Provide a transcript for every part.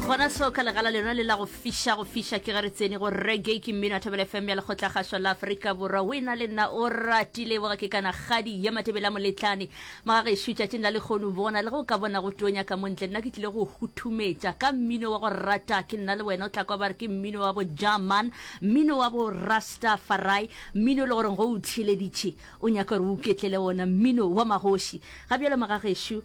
gona seo ka legala lena le la go fiša go fiša ke ge re tsene go rege ke mmino a thobela fm ya lekgotlagašwa la aforika borwa o e na le nna o ratile boga ke kana kgadi ya matebela moletlane maga gešo tšatšing la lekgono bona le go ka bona go tonya ka montle nna ke tlile go huthumetša ka mmino wa go rata ke nna le wena o tla kwa ba re ke mmino wa bo german mmino wa bo rasta farai mmino e le goreng go o tšheleditše o nyaka gore o ketlele wona mmino wa magoši ga bjalo maga gešo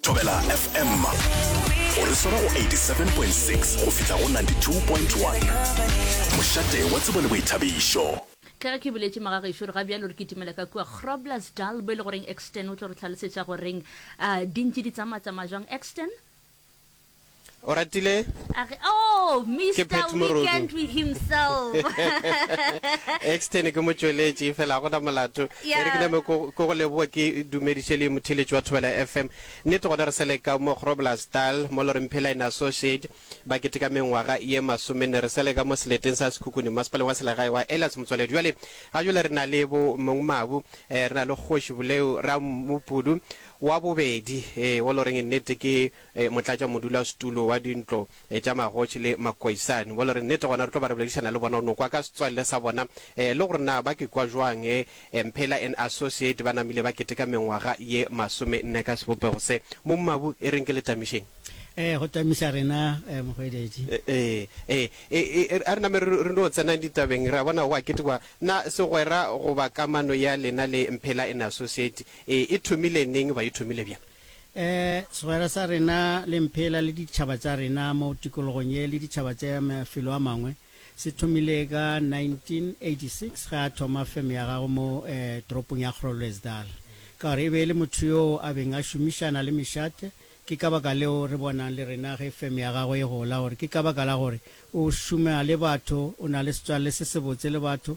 Thobela FM o re swara go 87.6 go fihla go 92.1 mošate wa tsebo le boithabišo. Ka ge ke boletše magagešo re ga bjalo re kitimela ka kua Grobler's Dal bo e le goreng Exton o tlo re tlhalosetša goreng uh, di ntše di tsamaya-tsamaya jwang Exton? O ratile? A re, oh, Ke Mr. Pat Morodu. Weekend with himself. extern ke motšweletši fela go na molato Yeah. e re ke name ko ko go leboa ke dumediše le motheletši wa thobela fm nnete gona re seleka mo groblerstal mo loreng phela in associate ba keteka mengwaga ye masomenne re seleka mo seleteng sa sekhukhune masepaleng wa selegae wa elias motswaledi bjale ga jole re na le bo mong mabu eh, re na le kgoši boleo ra mopudu wa bobedi eh, o loreng nnete ke motlatšamodulasetulo wa dintlo tša magoši le makoisani mo le re nnete gona re tlo ba re boledišana le bona o no kwa ka setswalle sa bona le gore na ba ke kwa jwang e mphela and associate ba namile ba keteka mengwaga ye masome nne ka sebopego se mo mmabu e reng ke le tamišeng ee go tamiša rena mohweletši ee ee a re name re no tsenang ditabeng re a bona go a ketekwa na segwera goba kamano ya lena le mphela and associate e thomile neng ba e thomile bjang E, segwera sa rena le mphela le ditšhaba tša rena mo tikologong ye le ditšhaba tša mafelo a mangwe se thomile ka 1986 ge a thoma feme ya gagwe mo e, toropong ya Grolwesdal ka gore e be e le motho yoo a beng a šomišana le mešate ke ka baka leo re bonang le rena ge feme ya gagwe e gola gore ke ka baka la gore o šoma le batho o na le setswalle se sebotse le batho